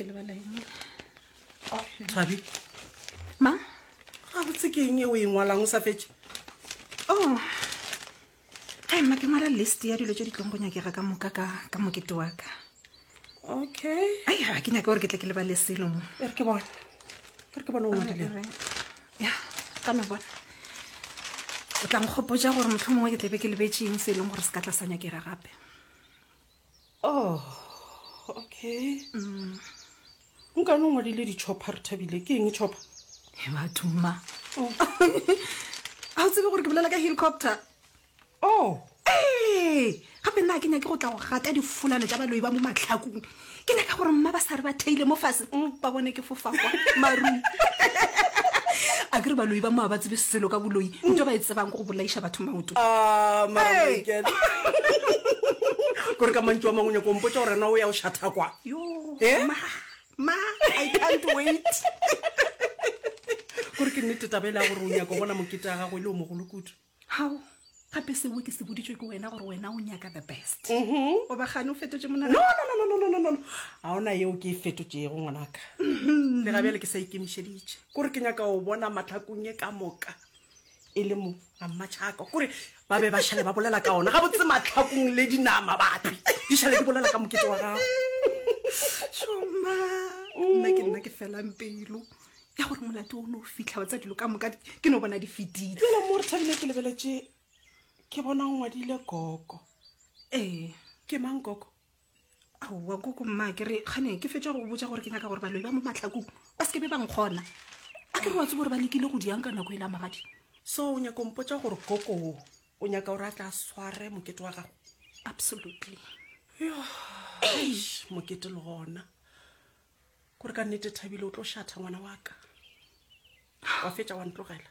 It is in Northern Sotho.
ke lebala eng oh, thabi ma ga botse ke eng e o e ngwalang o sa fetse o oh. a mma ke ngwala list ya dilo tse di tlong go nyakega ka moka ka mokete wa ka okay ai ga ke nyake gore ke tle ke lebale selo mo e re ke bone e re ke bone o ngwadile ya ka me bona o tla nkgopotsa gore motlho mongwe ke tlebe ke lebetseng se e leng gore se ka tla sa nyakega gape oh okay mm. nka no ngwadile ditšhopha re thabile ke eng tšhopha e batho mma oh. ga o tsebe gore ke bolela ka helicopter oh ee gape nna ke nyake go tla go gata difulano tša baloi ba mo matlhakong ke nyaka gore mma ba sa re ba theile mo fase mm, ba bone ke fofakwa marung a kere baloi ba moa ba tsebe selo ka boloi nto ba e tsebang ko go bolaiša batho maoto Ah, mara Hey. Michael. kore ka mantšu a mangwe nyako ompotsa gore na o ya o šatha kwa yo Eh? ma ma i can't wait kore ke nnete tabele ya gore o nyako bona mokete ya gago e le o mogolo kudu Hao, gape seo ke se boditšwe ke wena gore wena o nyaka the best. O ba gane o fetotše No, monagano. no, no, no, no, no, no, no, no. Ga ona yeo ke e fetotšego, ngwanaka. Le ga bjale ke sa ikemišeditše. Kore ke nyaka go bona mahlakong e ka moka e le mo a mmatšhaka. Kore ba be ba šale ba bolela ka ona. Gabotse mahlakong le dinama bapi. Di šale di bolela ka mokete wa gago. Šoma. Nna ke nna ke felang pelo. ya gore molato o ne o fitlha wa tsa dilo ka moka ke no bona di fetile jalo mo re thabile ke lebeletše ke bona o ngwadile koko ee ke mang koko aowa koko mma ke re gane ke fetsa go botsa gore ke nyaka gore baloi ba mo matlhakong ba seke be ba nkgona a ke re wa tse gore ba lekile go diang ka nako e la magadi so o nyaka ompotsa gore koko o o nyaka gore a tla sware mokete wa gago absolutely mokete le gona Kore ka nnete Thabile o tlo šatha ngwana wa ka. Wa fetša wa ntlogela.